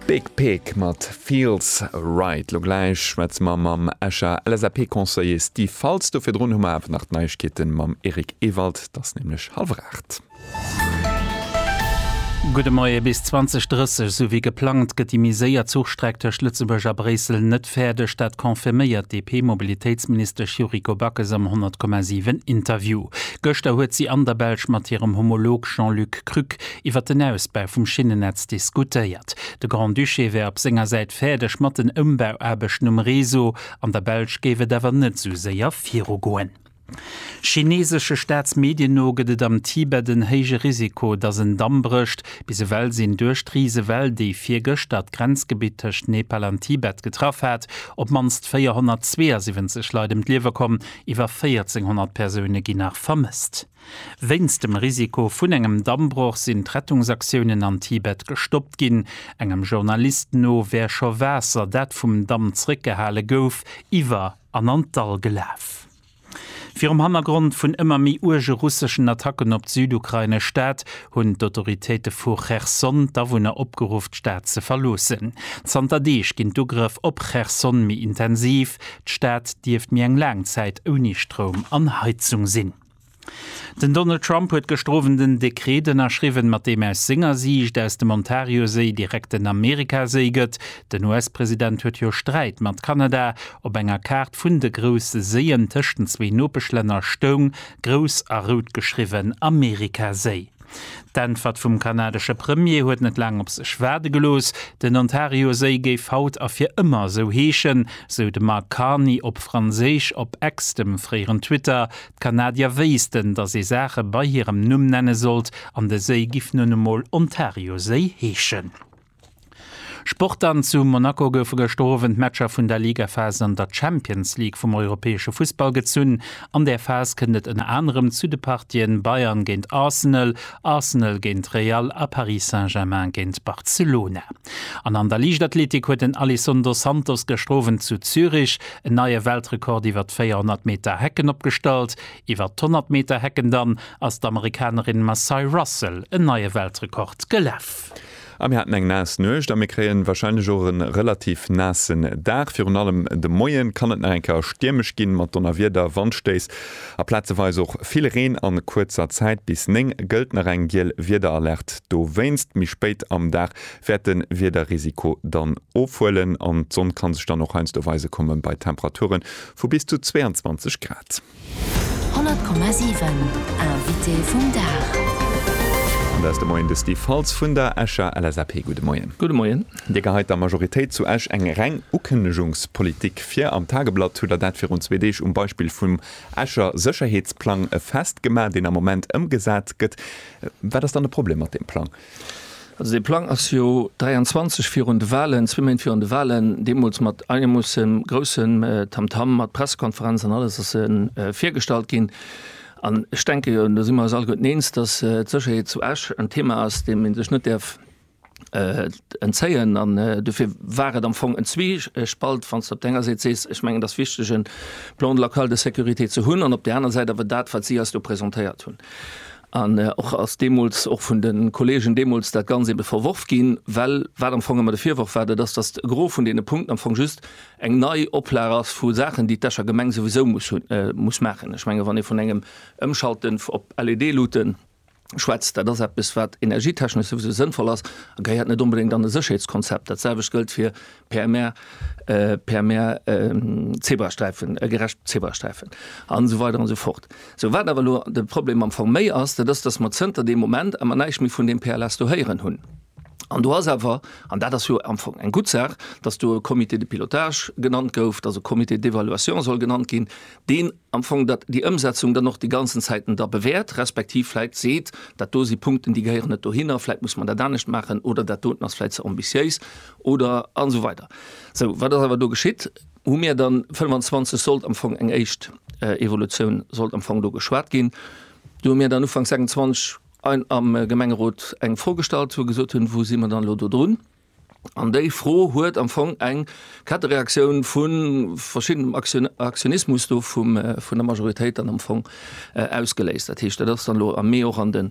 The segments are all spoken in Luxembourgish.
Big Pig mat Feels Right. Lo gläich schwätze mer mam Escher LSAP-Conseiller Steve Faltz. Do virdrun hu mer awer nach d'Neiegkeete mam Eric Ewald. Et ass nämlech hallwer aacht. Gudde Moie. Bis 2030, esou wéi geplangt, gëtt déi méi séier Zuchstreck tëscht Lëtzebuerg a Bréissel net fäerdeg. Dat confirméiert d'DP-Mobilitéitsministesch Yuriko Backes am 100,7 Interview. Gëschter huet si an der Belsch mat hirem Homolog Jean-Luc Krück iwwer den Ausbau vum Schinnennetz diskutéiert. De Grand-Duché wär op senger Säit fäerdeg mat den Ëmbauaarbechten um Réseau, an der Belsch géif et awer net esou séier virugoen. Chineesesche Staatsmedien no gëtt et am Tibet en héije Risiko, datt en Damm brécht. Bis ewell sinn duerch d'Risewell, déi virgëschter d'Grenzgebitt tëscht Nepal an Tibet getraff hat, op d'mannst 472 Leit ëm d'Liewe komm, iwwer 1.400 Persoune ginn nach vermësst. Wéinst dem Risiko vun engem Dammbroch sinn d'Rettungsaktiounen an Tibet gestoppt ginn. Engem Journalist no wär scho Waasser, dat vum Damm zeréckgehale gouf, iwwer an an d'Dall gelaf. Virum Hannergrond vun ëmmer méi uerge russeschen Attacken op d'südukrainesch Stad hunn d'Autoritéite vu Cherson d'Awunner opgeruff, d'Stad ze verloossen. Zanter Deeg ginn d'Ugrëff op Cherson méi intensiv. D'Stad dierft méi eng laang Zäit ouni Stroum an Heizung sinn. Den Donald Trump huet gëschter Owend en Dekreet ënnerschriwwen, mat deem aus senger Siicht aus dem Ontarioséi direkt en Amerikaséi gëtt. Den US-President huet jo Sträit mat Kanada. Op enger Kaart vun de grousse Séien tëscht den zwee Nopeschlänner stoung, grouss a rout geschriwwen, Amerikaséi. D'Äntwert vum kanadesche Premier huet net laang op sech waarde gelooss, Den Ontarioséi géif haut a fir ëmmer esou heeschen, sou de Mark Carney op Franséisch op X, dem fréieren Twitter. D'Kanadier wéissten, datt ee Saache bei hirem Numm nenne sollt, an de Séi giff nun emol Ontarioséi heeschen. Sport An zu Monaco goufe gëschter Owend d'Matcher vun der Ligaphas an der Champions League vum europäesche Fussball gezunn. An där Phas kënnt et ënner anerem zu de Partien Bayern géint Arsenal, Arsenal géint Real a Paris Saint-Germain géint Barcelona. An an der Liichtathletik huet den Alisson dos Santos gëschter Owend zu Zürich en neie Weltrekord iwwer d'Véierhonnert Meter Hecken opgestallt. Iwwer d'Honnert Meter Hecken dann ass d'Amerikanerin Macye Russell en neie Weltrekord gelaf. A mir haten eng naass Nuecht a mir kréien warscheinlech och e relativ naassen Dag. Virun allem de Moie kann et nach eng Kéier stiermesch ginn, mat Donnerwieder, Wandstéiss a plazeweis och vill Reen an kuerzer Zäit. Bis 9 gëllt nach eng giel Wiederalerte dowéinst. Méi spéit am Dag wäert de Wiederrisiko dann ofhuelen an d'Sonn kann sech dann och heiansdo weise kommen, bei Temperature vu bis zu 22 Grad. 100,7 Invité vum Dag. An dat ass de Moien de Steve Faltz vun der Escher LSAP. Gudde Moien. Gudde Moien. Dir geheit der Majoritéit zu Esch eng reng Ukënnegungspolitik vir. Am Tageblatt hutt der dat virun zwee Deeg um Beispill vum Escher Sécherheetsplang festgemaach, deen am Moment ëmgesat gëtt. Wat ass dann de Problem mat deem Plang? Also dee Plang ass jo 23 virun de Wahlen, zwee Méint virun de Wahlen, deemools mat einemussen groussem Tamtam, mat Pressekonferenz an alles ass e virgestallt ginn. An ech denke jo, an do si mer eis alleguerten eens, datt d'Sécherheet zu Esch en Thema ass, deem ee sech net däerf entzéien. An dofir war et am Fong en Zwiespalt, wann s de op der enger Säit sees, ech mengen et ass wichteg e Plan local de sécurité ze hunn, an op där aner Säit awer dat, wat si eis do presentéiert hunn. An och ass deemools och vun de Kollegen deemools dat ganz eebe verworf ginn, well wat am Fong ëmmer de Virworf war, dat ass, datt de Gros vun deene Punkten am Fong just eng nei Oplag ass vu Saachen, déi d'Escher Gemeng souwisou muss hunn, muss maachen. Ech menge wann ee vun engem Ëmschalten op LED-Luutte schwätzt, dat ass eppes wat energietechnesch souwisou sënnvoll ass a gehéiert net onbedéngt an e Sécherheetskonzept. Dat selwecht gëllt fir per mer per mer zebrasträifen e gerecht zebrasträifen an so weiter an so fort so wat awer lo de problem am fong méi ass dat ass datt mer zënter dem moment ammer neich méi vun dem pls do héieren hunn an du ass awer an dat ass jo am fong eng gutt saach datt du e comité de pilotage genannt gouf datt e comité d'évaluation soll genannt ginn deen am Fong, datt déi Ëmsetzung dann och déi ganzen Zäiten da bewäert, respektiv vläit seet, dat do si Punkten, déi gehéieren net dohinner, vläit muss mer dat anescht maachen oder dat doten ass vläit ze ambitiéis oder, an esou weider. Sou, wat ass awer do geschitt? Hu mir dann 25 sollt am Fong eng éischt Evolutioun sollt am Fong do geschwat ginn. Do hu mir dann Ufank 26 am Gemengerot eng Fro gestallt, wou gesot hunn, wou si mer dann elo dodrun? An déi Fro huet am Fong eng Kettereaktioun vu verschiddenem Aktionismus do vun der Majoritéit dann am Fong ausgeléist. Dat heescht, dat ass dann elo am Mee och an de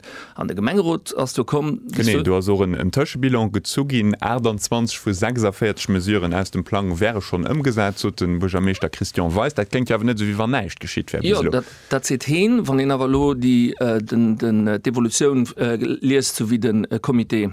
Gemengerot ass do komm. Genee, do ass och en Tëschebilan gezu ginn. 28 vu 46 Mesuren aus dem Plang wäre schonn ëmgesat, sot de Buergermeeschter Christian Weis. Dat kléngt jo awer net esou, wéi wann näischt geschitt wär bis elo. Jo, dat seet heen. Wann een awer elo d'Evolutioun liest, esou wéi de Comité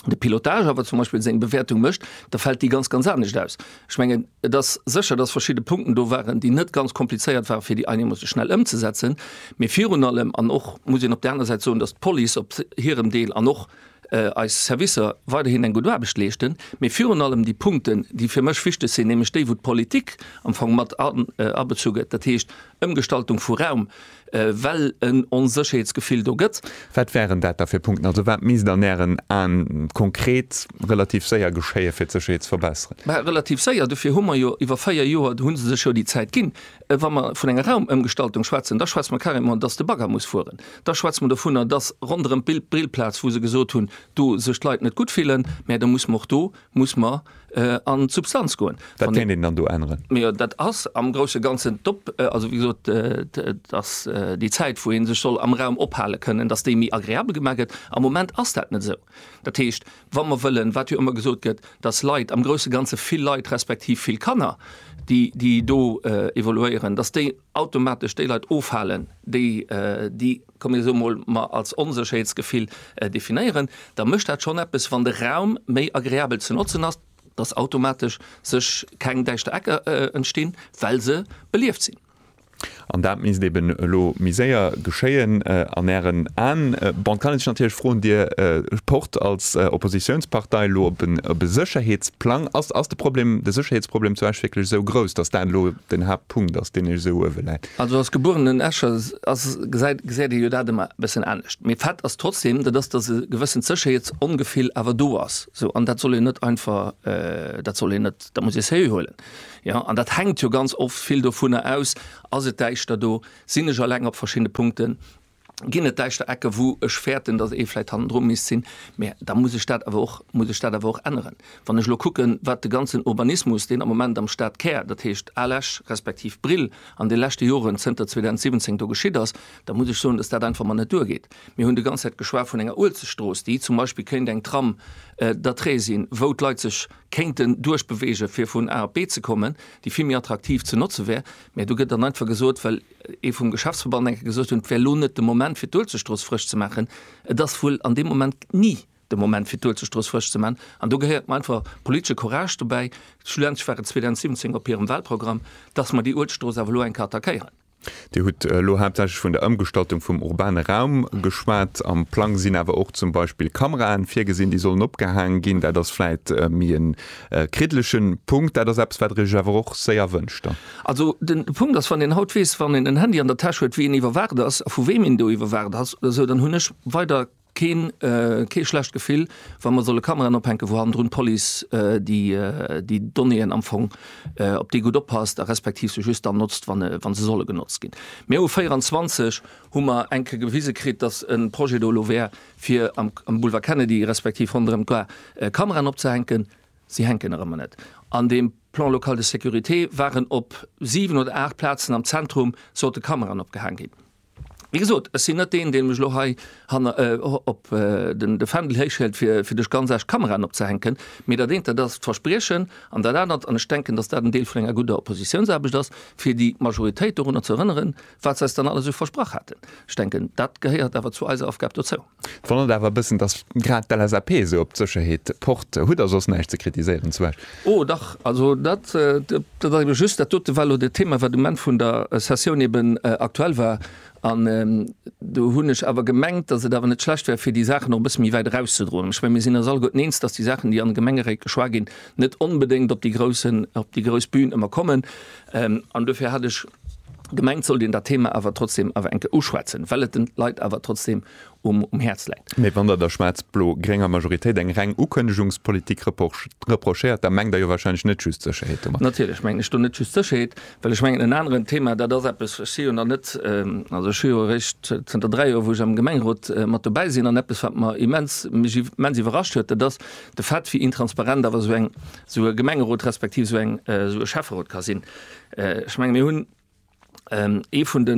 de Pilotage awer zum Beispiel seng Bewäertung mécht, da fält déi ganz ganz anescht aus. Ech mengen, et ass sécher, dass verschidde Punkten do waren, déi net ganz komplizéiert waren, fir déi einemoosse schnell ëmzesetzen. Mee virun allem, an och muss een op där aner Säit soen, dass d'Police op hirem Deel an och eis Servicer weiderhin eng gutt Aarbecht leeschten, mee virun allem déi Punkten, déi fir mech wichteg sinn, nämlech déi, wou d'Politik am Fong mat abezu gëtt, dat heescht Ëmgestaltung vu Raum, well en Onsécherheetsgefill do gëtt. Wat wären dat da fir Punkten? Also wat misst an Ären Aen konkret relativ séier geschéien, fir d'Sécherheet ze verbesseren? Mä relativ séier, dofir hu mer jo iwwer véier Joer, do hu se sech jo déi Zäit ginn. Wa mer vun enger Raumëmgestaltung schwätzen, da schwätze mer carrément, datt de Bagger muss fueren. Da schwätze mer dovunner, datt ronderëm d'Brillplaz, wou se gesot hunn, do sech d'Leit net gutt fillen, mä da muss mer och do muss mer an d'Substanz goen. Wat kéint een dann do änneren? Mee jo, dat ass am grouse Ganzen d'Op-, also wéi gesot, dass déi Zäit, wou ee sech soll am Raum ophale kënnen, dass déi méi agreabel gemaach gëtt. Am Moment ass dat net esou. Dat heescht, wa mer wëllen, wat jo ëmmer gesot gëtt, dass Leit, am grouse Ganze vill Leit respektiv vill Kanner, déi, déi do evoluéieren, dass déi automatesch déi Leit ofhalen, déi, déi komm mir soe mol, als Onsécherheetsgefill definéieren, da mécht dat schonn eppes, wann de Raum méi agreabel ze notzen ass, dass automatesch sech keng däischter Ecker entstinn, well se belieft sinn. An dat misst eben elo méi séier geschéien an Ären Aen. Bon, et kann een sech natierlech froen, Dir pocht als Oppositiounspartei elo op e Sécherheetsplang. Ass de Problem, de Sécherheetsproblem zu Esch wierklech esou grouss, dass dat elo den Haaptpunkt ass, deen Iech esou uewe läit? Also als gebuerenen Escher ass, gesäit, gesäit ee jo dat ëmmer e bëssen anescht. Mee Fakt ass trotzdem, dat ass, datt e gewëssent Sécherheetsongefill awer do ass. Sou, an dat soll een net einfach, dat soll een net, dat muss ee sérieux huelen. Jo, an dat hänkt jo ganz oft vill dovunner aus, Ass et däischter do? Sinn ech eleng op verschiddene Punkten? ginn et däischter Ecken, wou ech fäerten, datt ee vläicht hannendru misst sinn. Mä da muss ech dat awer och, muss ech dat awer och änneren. Wann ech elo kucken, wat de ganzen Urbanismus, deen am Moment am Stadkär, dat heescht Al Esch respektiv Brill, an de leschte Joren, zënter 2017, do geschitt ass, da muss ech soen, datt dat einfach mol net duergeet. Mir hunn déi ganz Zäit geschwat vun enger Uelzechtstrooss, déi zum Beispill kéint eng Tram d'atrait sinn, wou d'Leit sech kéinten duerchbeweegen, fir vun A op B ze kommen, déi vill méi attraktiv ze notze wär. Mä do gëtt dann einfach gesot, well ee vum Geschäftsverband eng Kéier gesot hunn, et wär elo net de Moment fir d'Uelzechtstrooss frësch ze maachen. Et ass wuel an deem Moment ni de Moment fir d'Uelzechtstrooss frësch ze maachen. An do gehéiert mer einfach politesche Courage dobäi, schlussendlech war et 2017 op hirem Wahlprogramm, dass mer déi Uelzechtstrooss awer elo eng Kéier attackéieren. Dir hutt elo haaptsächlech vun der Ëmgestaltung vum urbane Raum geschwat. Am Plang sinn awer och zum Beispill Kameraen virgesinn, déi sollen opgehaange ginn. Dat ass vläicht méi e kriddlege Punkt. Dat ass eppes, wat Der Iech awer och séier wënscht dann? Also den Punkt ass, wann een haut weess, wann een en Handy an der Täsch huet, wéi een iwwerwaacht ass a vu wem een do iwwerwaacht ass oder esou, dann hunn ech weider keen, kee schlecht Gefill, wa mer solle Kameraen ophänken, wou hannendrun d'Police déi, déi Donnéeën am Fong, op déi gutt oppasst a respektiv se just dann notzt, wa se solle genotzt ginn. Mir hu 24 hu mer eng Kéier gewise kritt, datt e Projet do elo wär, fir am Boulevard Kennedy respektiv ronderëm d'Gare Kameraen opzehänken. Si hänken erëm an et. An deem Plan local de sécurité waren op siwen oder aacht Plazen am Zentrum sollte Kameraen opgehaang ginn. Wéi gesot, ech sinn net deen, dee mech elo hei hanner op de Fändel héichhëlt, fir duerch ganz Esch Kameraen opzehänken. Mee dat eent, dat ass d'Verspriechen. An dat anert, an ech denken, datt dat en Deel vun enger gudder Oppositiounsaarbecht ass, fir déi Majoritéit dorunner ze erënneren, wat se eis dann alles esou versprach haten. Ech denken, dat gehéiert awer zu eiser Aufgab dozou. Et wonnert awer e bëssen, dass grad d'LSAP esou op d'Sécherheet pocht. Hutt Der soss näischt ze kritiséieren zu Esch? Oh dach, also dat ass ebe just, dat dote war elo dat Thema, wat um Enn vun der Sessioun eben aktuell war. An do hunn ech awer gemengt, dass et awer net schlecht wär, fir déi Saachen och e bësse méi wäit erauszedroen. Ech menge mir sinn eis alleguerten eens, dass déi Saachen, déi an de Gemengeréit geschwat ginn, net onbedéngt op déi grouss Bün ëmmer kommen. An dofir hat ech. gemengt sollt een dat Thema awer trotzdem awer eng Kéier uschwätzen, well et den Leit awer trotzdem um Häerz läit. Mee wann Der der schwaarz-blo-grénger Majoritéit eng reng Ukënnegungspolitik reprochéiert, da mengt Der jo wahrscheinlech net just Sécherheet domat. Natierlech mengen ech do net just Sécherheet, well ech mengen en aneren Thema, dat ass eppes, ech si jo nach net, also ech hu jo eréischt zënter dräi Joer, wou ech am Gemengerot mat dobäi sinn, an eppes, wat mer immens, mech immens iwwerrascht huet, dat ass de Fait, wéi intransparent awer esou eng, esou e Gemengerot respektiv esou eng, esou e Schäfferot ka sinn. Ech menge mir hunn ee vun de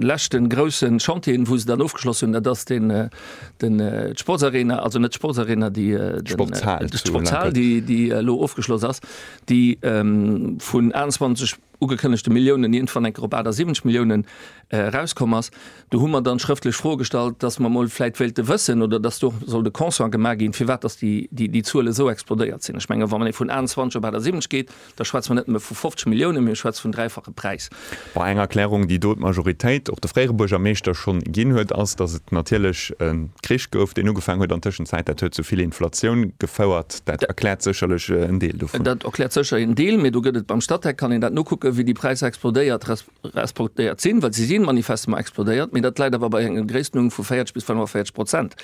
leschten grousse Chantieren, wou se dann ofgeschloss hunn, dat ass d'Sportsarena, also net d'Sportsarena, d'Sportshal, déi elo ofgeschloss ass, déi vun 21 ugekënnegte Milliounen iergendwann eng Kéier op 78 Milliounen erauskomm ass, do hu mer dann schrëftlech Froe gestallt, dass mer emol vläicht wéilte wëssen oder dass do soll de Constat gemaach ginn, firwat dass déi Zuele esou explodéiert sinn. Ech menge wa mer elo vun 21 op 78 geet, da schwätze mer net nëmme vu 50 Milliounen, mee ech schwätze vum dräifache Präis. Bon, eng Erklärung, déi do d'Majoritéit, och de fréiere Buergermeeschter, schonn ginn huet, ass, dass et natierlech e Krich gouf, deen ugefaangen huet an Tëschenzäit. Dat huet zu vill Inflatioun gefouert. Dat erkläert sécherlech en Deel dovun. Dat erkläert sécher en Deel, mee do gëtt et beim Statec, kann een dat nokucken, wéi déi Präisser explodéiert, resp. Explodéiert sinn, well se si manifestement explodéiert, mee dat läit awer bei enger Gréisstenunn vu 40 bis 45 Prozent.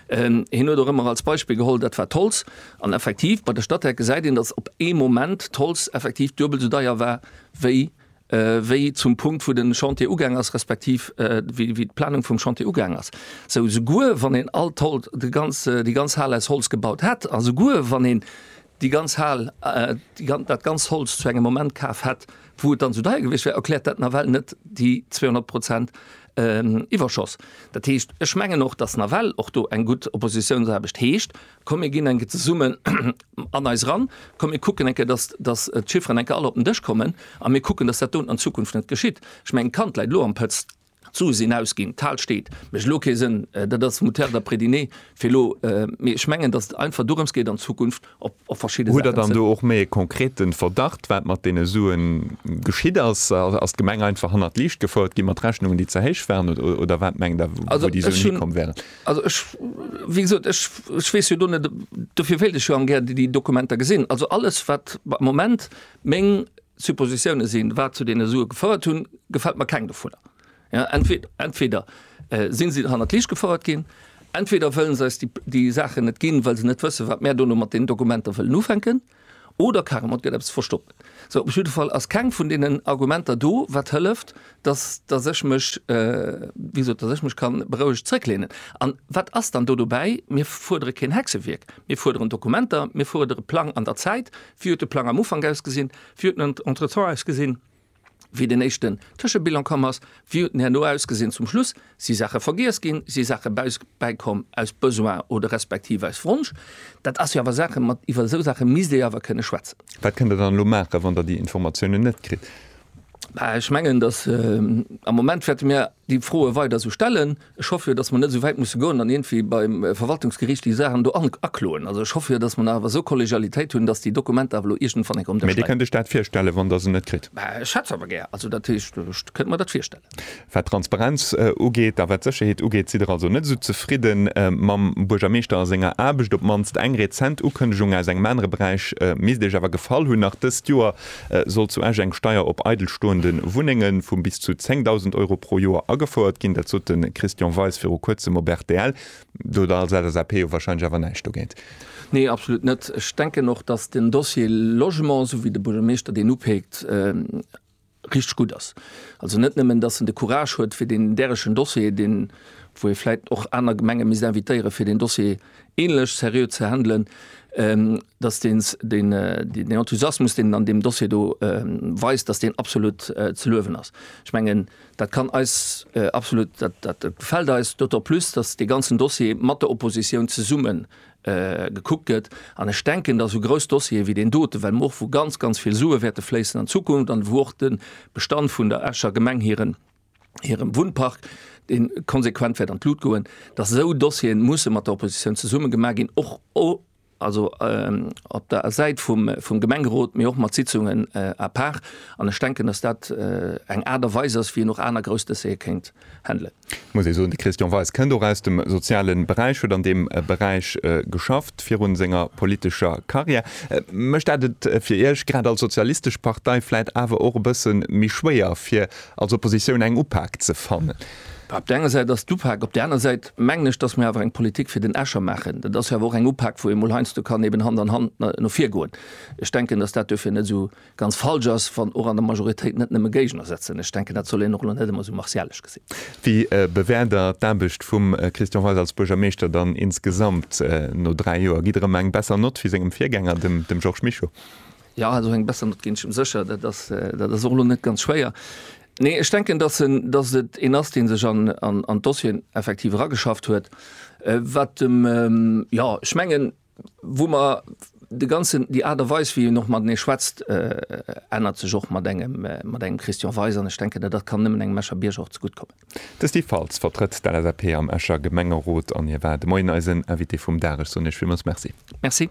Hien huet och ëmmer als Beispill geholl, dat war d'Holz. An effektiv, bei de Statec gesäit een, datt op ee Moment d'Holz effektiv duebel esou deier war, wéi wéi zum Punkt, wou de Chantier ugaang ass, respektiv wéi wéi d'Planung vum Chantier ugaang ass. Esou, souguer wann een all d'Holz, de ganz, déi ganz Hal aus Holz gebaut hätt a souguer wann een déi ganz Hal, dat ganz Holz zu engem Moment kaf hätt, wou et dann esou deier gewiescht wär, erkläert dat nawell net déi 200 Prozent Iwwerschoss. Dat heescht, ech mengen och, dass nawell och do eng gutt Oppositiounsaarbecht heescht, komm mir ginn eng Kéier zesummen an eis eran, komm mir kucken eng Kéier, dass d'Chifferen eng Kéier all op den Dësch kommen a mir kucken, dass dat do an Zukunft net geschitt. Ech mengen, d'Kand läit elo am Pëtz. D'Sue sinn ausginn, d'Hal steet. Mécht elo kee Sënn. Dat ass Moutarde a Prediné fir elo. Mee ech mengen, datt et einfach dorëms geet, an Zukunft op verschidde Saachen ze. Hutt Der dann do och méi e konkrete Verdacht, wat mat deene Sue geschitt ass? Ass d'Gemeng einfach hannert d'Liicht gefouert gi mat Rechnungen, déi ze héich waren? Oder wat mengt Der, wou déi Suen hikomm wären? Also ech, wéi gesot, ech weess jo do net. Dofir wéilt ech jo am gär déi Dokumenter gesinn. Also alles, wat am Moment meng Suppositioune sinn, wat zu deene Sue gefouert hunn, gefält mer keng dovunner. Entweder si se hannert d'Liicht gefouert ginn, entweder wëlle se eis déi Saachen net ginn, well se net wëssen, wat mär dono mat deenen Dokumenter wëllen ufänken, oder carrement et gëtt eppes verstoppt. Sou, op jidde Fall ass keng vun deenen Argumenter do, wat hëlleft, datt, datt ech mech, wéi gesot, datt ech mech ka berouegt zrëckleenen. An wat ass dann do dobäi? Mir fuerdere keen Hexewierk. Mir fuerderen Dokumenter, mir fuerdere Plang an der Zäit, Wéi huet de Plang am Ufank ausgesinn? Wéi huet en entretemps ausgesinn, wéi den éischten Tëschebilan komm ass? Wéi huet en herno ausgesinn zum Schluss? Si Saache vergiess ginn? Si Saache bäikomm aus Besoin oder respektiv aus Wonsch? Dat ass jo awer Saache mat, iwwer esou Saache misst ee jo awer kënne schwätzen. Wat kënnt Der dann elo maachen, wann Der déi Informatiounen net kritt? Ech mengen, datt am Moment wäerte mir déi Froe weider esou stellen. Ech hoffe jo, dass mer net esou wäit musse goen an iergendwéi beim Verwaltungsgericht déi Saachen do akloen. Also, ech hoffe jo, dass mer nach awer esou Kollegialitéit hunn, dass déi Dokumenter awer elo iergendwann enk op den Dësch leien. Mä Dir kënnt Iech dat virstellen, wann Der se net kritt? Mä ech hätt se awer gär. Also, dat heescht, ech kënnt mer dat virstellen. Wat d'Transparenz ugeet a wat d'Sécherheet ugeet, sidd Der also net esou zefridde mam Buergermeeschter a senger Aarbecht. Op d'mannst eng rezent Ukënnegung aus engem anere Beräich misst Iech awer gefall hunn, Nach dëst Joer Soll zu Esch eng Steier op eidelstoende Wunnenge vu bis zu 10.000 Euro pro Joer agefouert ginn? Dat sot de Christian Weis viru Kuerzem op rtl. Do hutt Der als LSAP jo warscheinlech awer näischt dogéint? Nee, absolut net. Ech denken och, datt den Dossier Logement, esou wéi de Buergermeeschter deen upeekt, richteg gutt ass. Also net nëmmen, datt en de Courage huet fir deen därechen Dossier, deen, wou ee vläit och aner Gemenge misst invitéieren, fir deen Dossier, ähnlech seriö ze handelen, dass deen den Enthusiasmus, deen en an deem Dossier do weist, dass deen absolut ze luewen ass. Ech mengen, dat kann eis absolut, dat gefält eis, d'autant plus, dass dee ganzen Dossier mat der Opposition zesumme gekuckt gëtt. An ech denken, dass esou grouss Dossiere wéi deen dote, well mer och, wou ganz, ganz vill Sue wäerte fléissen an Zukunft an wou och de Bestand vun der Escher Gemeng hiren hirem Wunnpark, dee konsequent wäert an d'Lut goen, datt esou Dossieren musse mat der Oppositioun zesumme gemaach ginn, och op der Säit vum Gemengerot, mee och mat Sitzungen à part. An ech denken, datt dat eng Aart a Weis ass, wéi een och aner grouss Dossiere kéint handelen. Et muss ee soen, de Christian Weis kënnt och aus dem soziale Beräich, huet an deem Beräich geschafft virun senger politescher Karriär. Mécht dat et fir Iech, grad als sozialistesch Partei, vläit awer och e bësse méi schwéier, fir als Oppositioun eng Upak ze fannen. Op där enger Säit ass et d'Upak, op där aner Säit mengen ech, datt mir awer eng Politik fir den Escher maachen. Dat ass jo awer och eng Upak, wou ee mol heiansdo kann eben Hand an Hand no vir goen. Ech denken, datt dat duerfir net esou ganz falsch ass, wann och an der Majoritéit net nëmme Géigner sëtzen. Ech denken, dat soll een och elo net ëmmer esou martialesch gesinn. Wéi bewäert Der d'Aarbecht vum Christian Weis als Buergermeeschter dann insgesamt no dräi Joer? Gitt Der ëm eng besser Nott wéi sengem Virgänger, dem Georges Mischo? Jo, esou eng besser Nott ginn ech em sécher. Dat ass, dat ass och elo net ganz schwéier. Nee, ech denken, dass en, dass et een ass, dee sech an, an, an d'Dossieren effektiv erageschafft huet. Wat dem, jo, ech mengen, wou mer de ganzen, déi Aart a Weis, wéi een och matenee schwätzt, ännert sech och mat engem, mat engem Christian Weis. An ech denken, dat, dat kann nëmmen engem Escher Bierger och zegutt kommen. De Steve Faltz vertrëtt d'LSAP am Escher Gemengerot an hie war de Moien eisen Invité vum Dag. Ech soen Iech villmools Merci. Merci.